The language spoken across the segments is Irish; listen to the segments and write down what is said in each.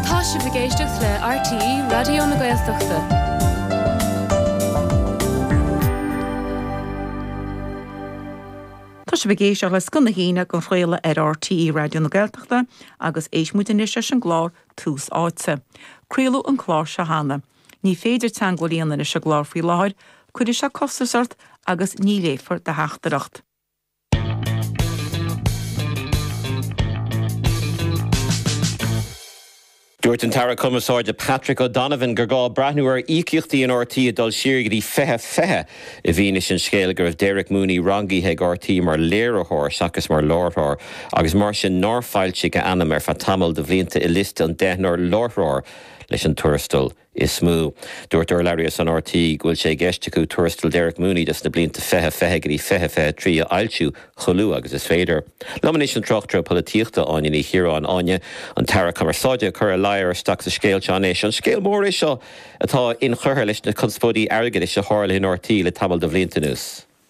Tá sibh ag éisteacht le RTÉ Raidió na Gaeltachta. Tá sibh ag éisteacht le Scoth na hAoine á chraoladh ar RTÉ Raidió na Gaeltachta agus éist muid anois leis an gclár Tús Áite. Craoladh an clár seo cheana. Ní féidir teagmháil a dhéanamh leis an gclár faoi láthair, cuirfidh sé costas ort agus ní léifear do theachtaireacht. Dúirt an tAire Cumarsáide Patrick O'Donovan gur gá breathnú ar íocaíochtaí in RTÉ ag dul siar go dtí 2020 i bhfianaise an scéil go raibh Derek Mooney rangaithe ag RTÉ mar léiritheoir seachas mar láithreoir agus mar sin nár foilsíodh a ainm ar feadh tamall de bhlianta i liosta an deichniúr láithreoir leis an tuarastal is mó. Dúirt urlabhraí as RTÉ go bhfuil sé i gceist acu tuarastal Derek Mooney dos na blianta 2020 go dtí 2023 a fhoilsiú chomh luath agus is féidir. Liom anois an tráchtaire polaitíochta, Áine Ní Chiaráin. Áine, an tAire Cumarsáide, ag cur a ladhar isteach sa scéal seo anois. An scéal mór é seo atá inchurtha leis na conspóidí airgeadais a tharla in RTÉ le tamall de bhlianta anuas?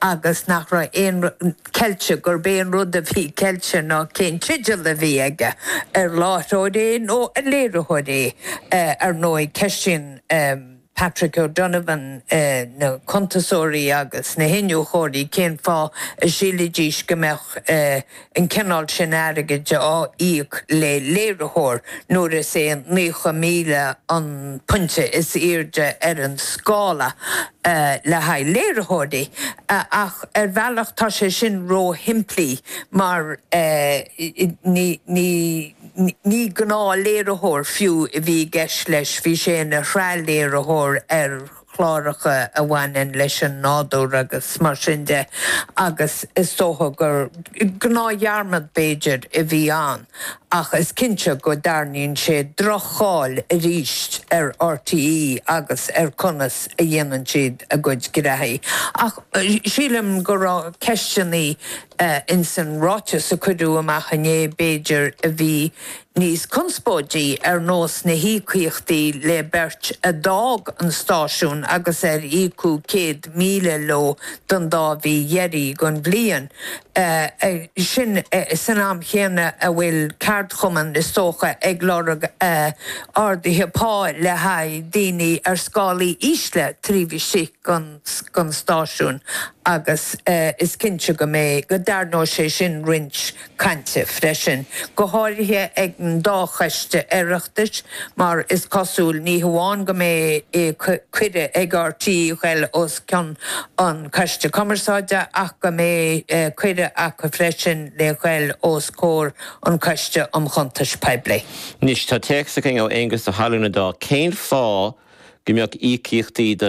agus nach raibh aon cheilt gurb é an rud a bhí ceilte ná cén teideal a bhí aige, ar láithreoir é nó ar léiritheoir é. Ar ndóigh, ceistíonn Patrick O'Donovan na cuntasóirí agus na hiniúchóirí cén fáth a sílfidís go mbeadh. an cineál sin airgid á íoc le léiritheoir nuair is é 90,000 an pointe is airde ar an scála le haghaidh léiritheoirí, ach ar bhealach tá sé sin róshimplí mar ní gnáthléiritheoir fiú a bhí i gceist leis, bhí sé ina shraithléiritheoir ar. chláracha a bhaineann leis an nádúr agus mar sin de agus is dócha gur gnáthdhearmad, b'fhéidir, a bhí ann ach is cinnte go dtarraingíonn sé droch-cháil arís ar RTÉ agus ar conas a dhéanann siad a gcuid gnóthaí. Ach sílim go raibh ceisteanna Ins an ráiteas a cuireadh amach inné, b'fhéidir, a bhí níos conspóidí, ar nós na híocaíochtaí le beirt a d'fhág an stáisiún agus ar íocadh céad míle leo don dá mhí dheiridh den bhliain sin, san am chéanna a bhfuil ceardchumann, is dócha, ag lorg arduithe pá le haghaidh daoine ar scálaí ísle taobh istigh den. don stáisiún agus is cinnte go mbeidh, go dtairneoidh sé sin roinnt cainte freisin, go háirithe ag an dá choiste Oireachtais mar is cosúil, ní hamháin go mbeidh cuireadh ag RTÉ dhul os cionn an Coiste Cumarsáide ach go mbeidh cuireadh acu freisin le dhul os comhair an Coiste um Chuntais Poiblí. Anois tá téacs againn ó Aonghus Ó hAlmhain Dá cén fáth go mbeadh íocaíochtaí do